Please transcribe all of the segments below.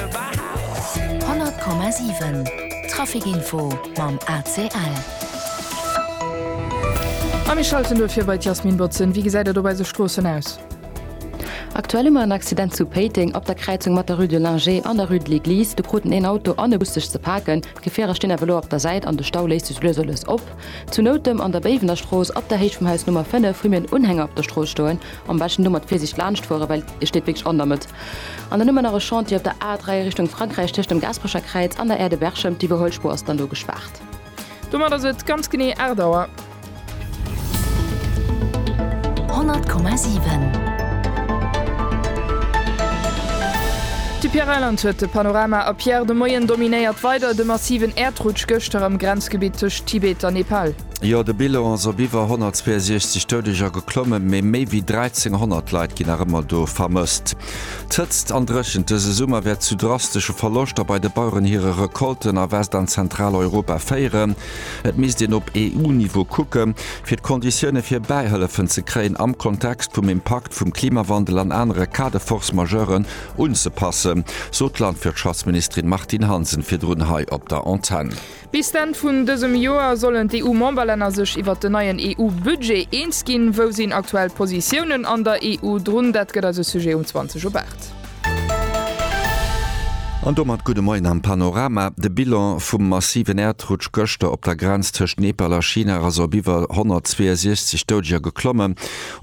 100,7 Traficinfo mam ACL. A mir schalten duerfir bei d'Jasmine Botzen. Wéi gesäit et op eise Stroossen aus? Aktuell hu mer en Accident zu Péiteng op der Kräizung mat der Rue de Lingé an der Rue de l'Eglise. Do kruten een Auto an e Bus sech ze paken. D'Gefierer stinn awer elo op der Säit an de Stau léisst sech lues a lues op. Zu Noutem an der Béiwener Strooss op der Héicht vum Haus Nummer 5 hu mir en Unhänger op der Strooss stoen. Am beschten do mat Virsicht laanscht fueren, well e steet wierklech an der Mëtt. An dann hu mer nach e Chantier op der A3 Richtung Frankräich tëscht dem Gasperecher Kräiz an der Aire de Berchem. Déi Iwwerholspur ass dann do gespaart. Domat ass et ganz genee 8 Auer. 100,7. De Pierre Reyland huet de Panorama a Pierre, de Moien dominéiert weider de massiven Äerdrutsch gëschter am Grenzgebitt tëscht Tibet a Nepal. Jo, de Bilan ass op iwwer 162 Doudeger geklomme, mee méi wéi 1.300 Leit ginn nach ëmmer do vermësst. D'Hëtzt an Dréchent dëse Summer wäert zu drastesche Verloschter bei de Baueren hire Recolten a West an Zentraleuropa féieren. Et misst een op EU-Niveau kucke fir d'Konditioune fir Bäihëllefen ze kréien am Kontext vum Impakt vum Klimawandel an anere Cas de force majeuren unzepassen, sot d'Landwirtschaftsministerin Martine Hansen virdrun hei op der Antenn. Bis d'Enn vun dësem Joer sollen d'EU-Memberlänner sech iwwert den neien EU-Budget eens ginn. Wou sinn aktuell d'Positiounen an der EU drun? Dat gëtt eise Sujet um 20 op 8. An domat gudde Moien am Panorama. De Bilan vum massiven Äerdrutsch gëschter op der Grenz tëscht Nepal a China ass op iwwer 162 Doudger geklommen.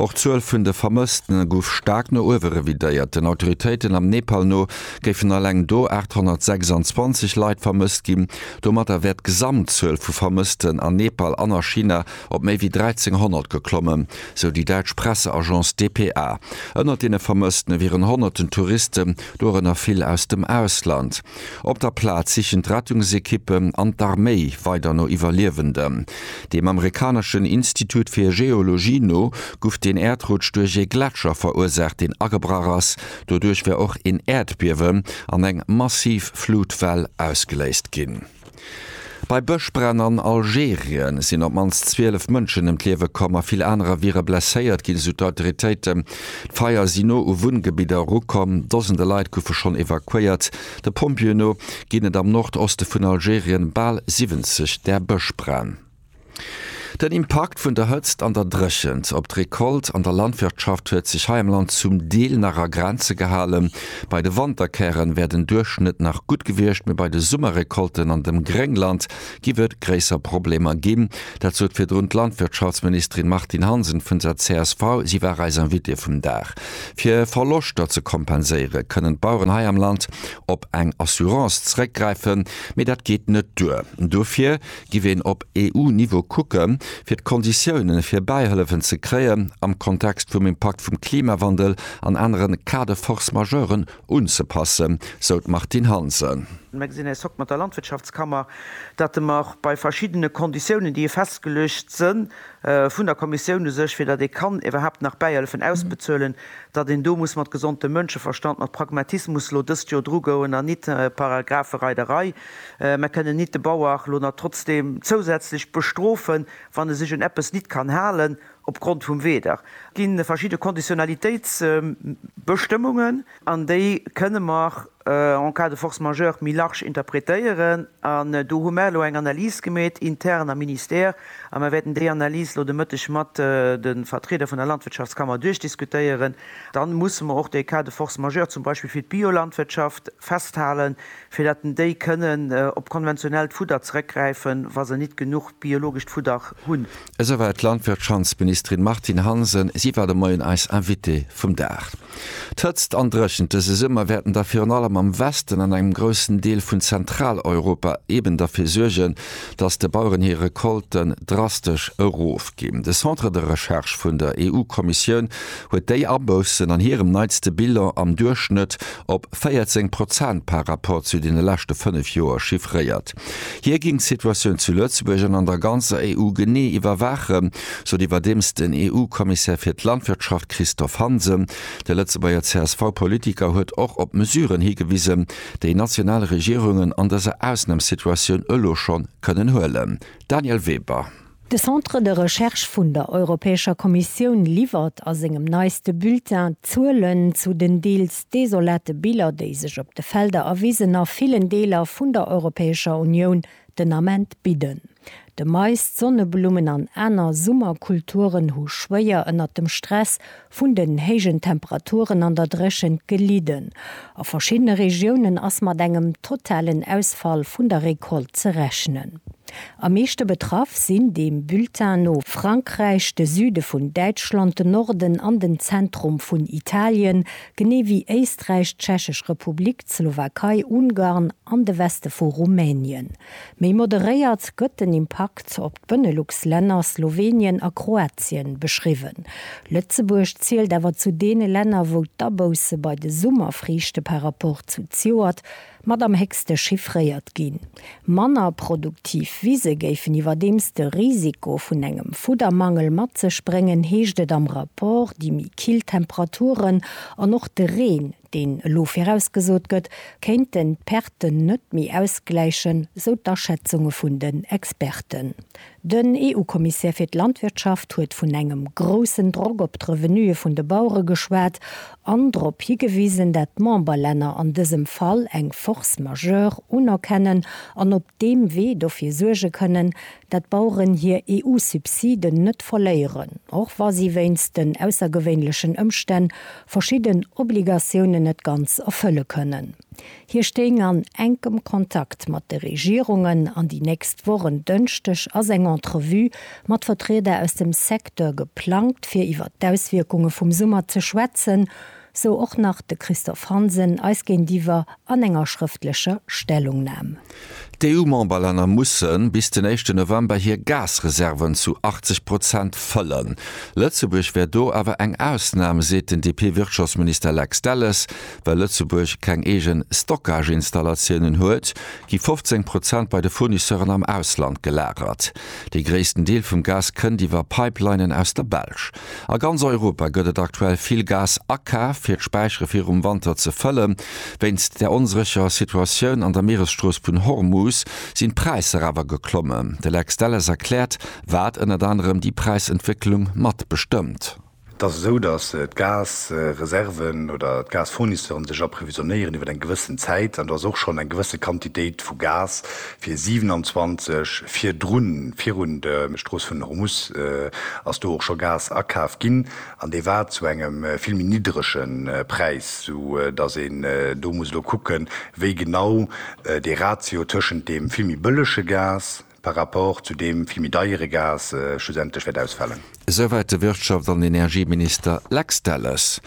Och d'Zuel vun de Vermëssten gouf staark no uewe revidéiert. Den Autoritéiten am Nepal no géifen alleng do 826 Leit vermësst ginn. Domatter wär d'Gesamtzuel vu Vermëssten an Nepal an a China op méi wéi 1.300 geklommen, sou déi däitsch Presseagence dpa. Ënnert deene Vermësstene wieren honnerten Touristen, dorënner vill aus dem Ausland. Op der Plaz sichen d'Rettungsekippen an d'Arméi weider no Iwwerliewenden. Dem amerikaneschen Institut fir Geologie no guff den Äerdrutsch duerch ee Gletscher verursaacht, deen agebrach ass, Doduerch wär och een Äerdbiewen an eng massiv Flutwell ausgeléist ginn. Bei Bëschbränn an Algerien sinn op d'mannst 12 Mënschen ëm d'Liewe komm a vill anerer wiere blesséiert ginn, esou d'Autoritéiten. D'Feier si no u Wunngebidder erukomm, Dosende Leit goufe schonn evakuéiert. De Pompjeeë no ginn et am Nordoste vun Algerien bal 70 där Bëschbränn. Den Impakt vun der Hëtzt an der Dréchent op d'Recolte an der Landwirtschaft huet sech hei am Land zum Deel nach a Grenze gehalen. Bei de Wanterkären wär den Duerchschnëtt nach gutt gewiescht, mee bei de Summerrecolten an dem Gréngland giff et gréisser Problemer ginn. Dat sot virdrun d'Landwirtschaftsministerin Martine Hansen vun der csv. Si war eis Invitée vum Dag. Fir Verloschter ze kompenséiere kënnen d'Baueren hei am Land op eng Assurance zréckgräifen, mee dat geet net duer. Dofir Giff een op EU-Niveau kucken, fir d'Konditiounen fir Bäihëllefen ze kréien am Kontext vum Impakt vum Klimawandel an anere Cas de force majeuren unzepassen, sou d'Martine Hansen. Mir gesinn eis Hoc mat der Landwirtschaftskammer, dat mer och bei verschiddene Konditiounen, déi festgeluecht se vun der Kommissioun u sech, fir datt ee kann iwwerhaapt nach Bäihëllefen ausbezuelen, datt een do muss mat gesondem Mënscheverstand, mat Pragmatismus elo dëst Jor drugoen an nit Paragraphe Rei der Rei. Mer kënnen nit de Bauer lo na trotzdem zousätzlech bestrofen, wann e sech un eppes nit kann halen opgrond vum Weder. Et gi verschidde Konditionnalitéitsbestëmmungen an déi kënne mer en cas de force majeure méi large interpretéieren an do hu mer elo eng Analys gemeet intern am Ministère a mer wäerten déi Analys lo de Mëtteg mat de Vertrieder vun der Landwirtschaftskammer duerchdiskutéieren. Dann musse mer och dee Cas de force majeure zum Beispill fir d'Biolandwirtschaft festhalen. fir dat den déi kënnen op konventionellt Fudder zeréckgräifen, wa se nit genuch biologescht Fudder hunn. Esou war et d'Landwirtschantsministerin Martine Hansen. Si war de Moien eis Invitée vum Dag. D'Hëtzt an Dréchent dëse Summer wäerten da virun allem am Westen an engem groussen Deel vun Zentraleuropa eben derfir suergen, datt de Baueren hir Recolten drastesch erofginn. De Centre de Recherche vun der EU-Kommissioun huet déi Aboussen an hirem neitste Bilan am Duerchschnëtt op 14 Prozent par Rapport zu deene leschte fënnef Joer chiffréiert. Hie géing d'Situatioun zu Lëtzebuerg an an der ganzer EU genee iwwerwaachen, sot iwwerdeems den EU-Kommissär fir d'Landwirtschaft Christophe Hansen. De Lëtzebuerger CSV-Politiker huet och op Mesuren higewisen, déi national Regierungen an dëser Ausnamssituatioun elo schonn kënnen huelen. Daniel Weber. De Centre de Recherche vun der Europäescher Kommissioun liwwert a sengem neiste Bulletin d'Zuelen zu den deels desolate Biller, déi sech op de Felder a Wisen a villen Deeler vun der Europäescher Unioun den Ament bidden. De Mais, d'Sonneblummen an aner Summerkulturen hu schwéier ënnert dem Stress Vun den héijen Temperaturen an der Dréchent gelidden. A verschiddene Regiounen ass mat engem totalen Ausfall vun der Recolte ze rechnen. Am meeschte betraff sinn deem Bulletin no Frankräich, de Süde vun Däitschland, den Norden an den Zentrum vun Italien, genee wéi Éisträich, d'Tschechesch Republik, d'Slowakei, Ungarn an de Weste vu Rumänien. Méi moderéiert gëtt den Impakt op d'Benelux-Länner, Slowenien a Kroatien beschriwwen. Lëtzebuerg zielt awer zu deene Länner, wou d'Abousse bei de Summerfriichte par rapport zu zjoert mat am héchste chiffréiert ginn. Manner produktiv Wise géifen iwwerdeems de Risiko vun engem Fuddermangel mat sech bréngen, heescht et am Rapport. Déi méi kill Temperaturen an och de Reen deen elo virausgesot gëtt, kéinte d'Perten net méi ausgläichen, sou d'Aschätzunge vun den Experten. Den EU-Kommissär fir d'Landwirtschaft huet vun engem groussen Drock op d'Revenuë vun de Bauere geschwat an drop higewisen, dat d'Memberlänner an dësem Fall eng Force majeure unerkennen an op deem Wee dofir suerge kënnen, dat d'Baueren hir EU-Subsiden net verléieren, och wa si wéinst den aussergewéinlechen Ëmstänn verschidden Obligatiounen net ganz erfëlle kënnen. Hie stéing an enkem Kontakt mat de Regierungen an déi nächst Woch, en Dënschdeg ass eng Entrevue mat Vertrieder aus dem Secteur geplangt, fir iwwer d'Auswierkunge vum Summer ze schwätzen. Sou och nach de Christophe Hansen eis géintiwwer an enger schrëftlecher Stellungnam. D'EU-Memberlänner musse bis den éischte November hir Gasreserven zu 80 Prozent fëllen. Lëtzebuerg wär do awer eng Ausnam, seet den DP-Wirtschaftsminister Lex Delles. Well Lëtzebuerg keng eege Stockage-Installatiounen huet, gi 15 Prozent bei de Fournisseuren am Ausland gelagert. Dee gréissten Deel vum Gas kënnt iwwer Pipelinen aus der Belsch. A ganz Europa gëtt et aktuell vill Gas akaaft, fir d'Späichere virum Wanter ze fëllen. Wéinst der onsécherer Situatioun an der Mieresstrooss vun Hormus sinn d'Präisser awer geklommen. De Lex Delles erkläert, wat ënnert anerem déi Präisentwécklung mat bestëmmt. Et ass esou, datt d'Gasreserven oder d'Gasfournisseure sech approvisionéieren iwwer eng gewëssen Zäit. An do ass och schonn eng gewësse Quantitéit vu Gas, Fir 27 virdrun, virun de Strooss vun Hormus, ass do och scho Gas akaf ginn, an dee war zu engem vill méi nidderege Präis, sou datt een do muss elo kucken, wéi genau dee Ratio tëschent deem vill méi bëllege Gas par rapport zu deem vill méi deiere Gas schlussendlech wäert ausfalen. Esouwäit de Wirtschafts an Energieminister Lex Delles.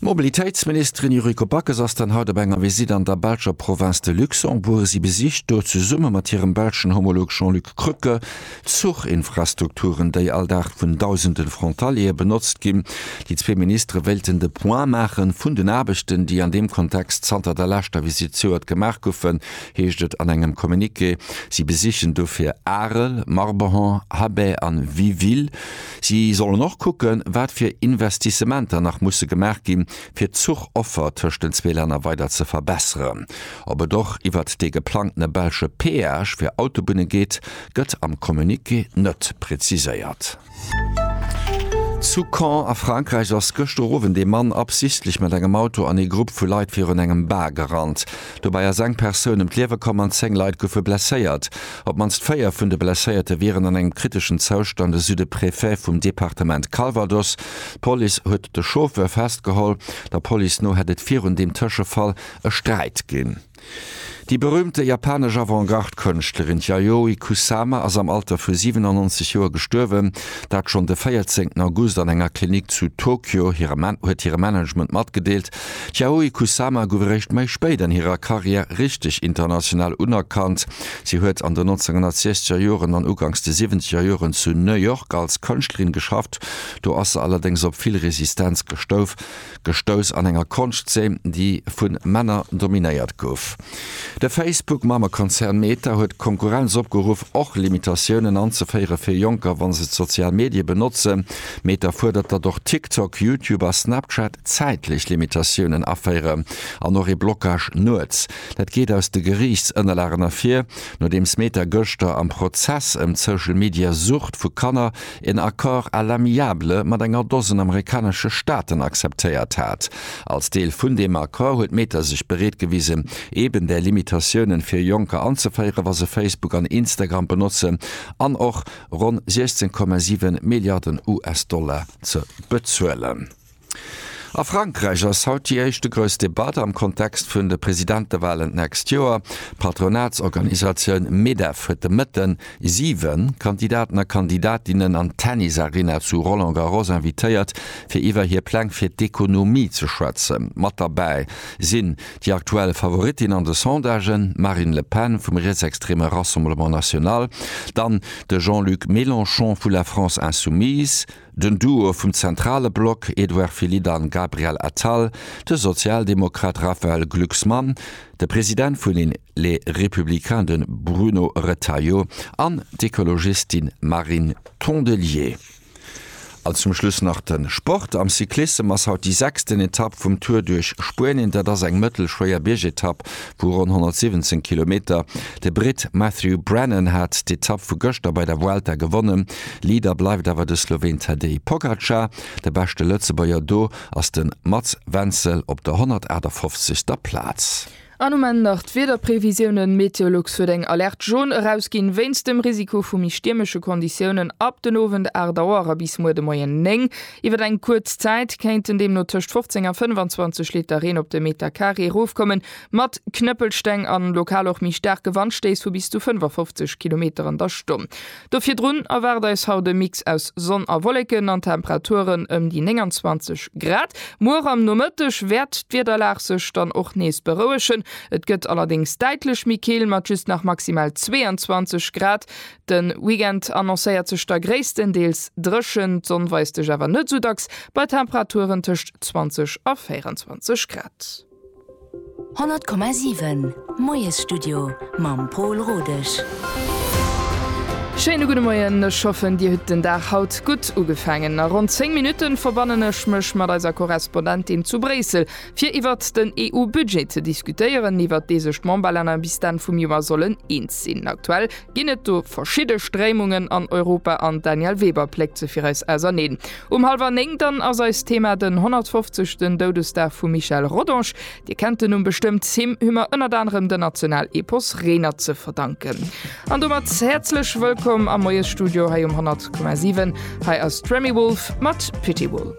D'Mobilitéitsministerin Yuriko Backes ass dann haut op enger Visitt an der belscher Provënz de Luxembourg. Si besicht do zesumme mat hirem belschen Homolog Jean-Luc Krücke d'Zuchinfrastrukturen, déi all Dag vun dausende Frontaliere benotzt ginn. Déi zwee Ministere wéilten de Point maache vun den Aarbechten, déi an deem Kontext zanter der leschter Visitt zejoert gemaach goufen, heescht et an engem Communiqué. Si besichen dofir Arel, Marbehan, Habay an Wiville. Si sollen och kucken, wat fir Investissementer nach musse gemaach ginn, fir d'Zuchoffer tëscht den zwee Länner weider ze verbesseren. Ob et och iwwert dee geplangtene belsche Peage fir Autobunne geet, gëtt am Communiqué net preziséiert. Zu Caen a Frankräich ass gëschter Owend ee Mann absichtlech mat engem Auto an ee Grupp vu Leit virun engem Bar gerannt. Dobäi ass eng Persoun ëm d'Liewe komm an 10 Leit goufe blesséiert. Op d'mannst 4 vun de Blesséierte wieren an engem kriteschen Zoustand, esou de Préfet vum Departement Calvados. D'Police huet de Chauffeur festgeholl. Der Police no hätt et virun deem Tëschefall e Sträit ginn. Déi berüümte japanesch Avantgarde-Kënschtlerin Yayoi Kusama ass am Alter vu 97 Joer gestuerwen, dat schonn de 14 August an enger Klinik zu Tokio, huet hire Management matgedeelt. D'Yayoi Kusama gouf eréischt méi spéit an hirer Karriär richteg international unerkannt. Si huet an den 1960er Joren an uganks de siwwenzeger Joren zu New York als Kënschtlerin geschafft, do ass se allerdéngs op vill Resistenz gestouf. gestouss an enger Konschtzeen, déi vu Männer dominéiert gouf. De Facebook-Mammekonzern Meta huet d'Konkurrenz opgeruff, och Limitatiounen anzeféiere fir Jonker, wa se d'sozial Medie benotzen. Meta fuerdert, datt och TikTok, YouTube a Snapchat zäitlech Limitatiounen aféiere an och ee Blockage nuets. Dat geet aus de Geriichtsënnerlagen ervir, nodeems Meta gëschter am Prozess ëm d'Social-Media-Sucht vu Kanner en Accord à l'amiable mat enger Dosen amerikanesche Staaten akzeptéiert hat. Als Deel vun deem Accord huet Meta sech bereet gewisen, eben där Limitatiounen fir Jonker anzeféieren, wa se Facebook an Instagram benotzen, an och ronn 16,7 Milliarden US-Dollar ze bezuelen. A Frankräich ass haut déi éischte grouss Debatt am Kontext vun de Presidentewalen d'nächst Joer. D'Patronatsorganisatioun Medef huet de Mëtten 7 Kandidaten a Kandidatinnen an d'Tennisarena zu Roland Garros invitéiert, fir iwwer hir Pläng fir d'Ekonomie ze schwätzen. Mat derbäi sinn déi aktuell Favorittin an de Sondagen, d'Marine Le Pen vum rietsextreme Rassemblement National, dann de Jean-Luc Mélenchon vu La France Insoumise, Den Duo vum zentrale Block, Edouard Philippe an Gabriel Attal, de Sozialdemokrat Raphaël Glucksmann, de President vun Les Républicains den Bruno Retailleau an d'Ekologistin Marine Tondelier. An zum Schluss nach den Sport, am Cyclissem ass haut déi sechsten Etapp vum Tour duerch Spuenien. Dat ass eng mëttelschwéier Biergetapp vu ronn 117 Kilometer. De Britt Matthew Brennan hat d'Etapp vu gëschter bei der Vuelta gewonnen. Leader bleift awer de Sloween Tadej Pogacar. De beschte Lëtzebuerger do ass de Mats Wenzel op der 158. Plaz. An um Enn nach d'Wiederprevisiounen, Meteolux huet eng Alerte Jaune erausginn, wéinst dem Risiko vu méi stiermesche Konditiounen ab den Owend 8 Auer a bis muer de Moien 9. Iwwer eng kuerz Zäit kéinten deemno tëscht 15 a 25 Liter Reen op de Meter Carré erofkommen, mat Knëppelsteng an lokal och méi staarke Wandstéiss vu bis zu 55 Kilometer an der Stonn. Do virdrun erwaart eis haut e Mix aus Sonn a Wolleken an Temperaturen ëm déi 29 Grad. Muer am Nomëtteg wäert d'Wiederlag sech dann och nees berouegen, et gëtt allerdéngs däitlech méi kill mat just nach maximal 22 Grad. De Weekend annoncéiert sech da gréisstendeels dréchen, d'Sonn weist sech awer net sou dacks, bei Temperaturen tëscht 20 a 24 Grad. 100,7 Moiesstudio mam Pol Rodesch. Schéine gudde Moien, ech hoffen dir hutt den Dag haut gutt ugefaangen. A ronn 10 Minutten verbannen ech mech mat eiser Korrespondentin zu Bréissel fir iwwert den EU-Budget ze diskutéieren, iwwert dee sech d'Memberlänner bis d'Enn vum Joer sollen eens sinn. Aktuell Ginn et do verschidde Stréimungen an Europa an d'Danièle Weber pléckt se fir eis auserneen. Um hallwer 9 dann ass eist Thema den 150. Doudesdag vum Michel Rodange. Dir kennt den Numm bestëmmt, him hu mer ënnert anerem den Nationalepos Renert ze verdanken. An domat häerzlech wëllkomm am Moiesstudio hei um 100,7. Hei ass d'Remi Wolf mat Pitywool.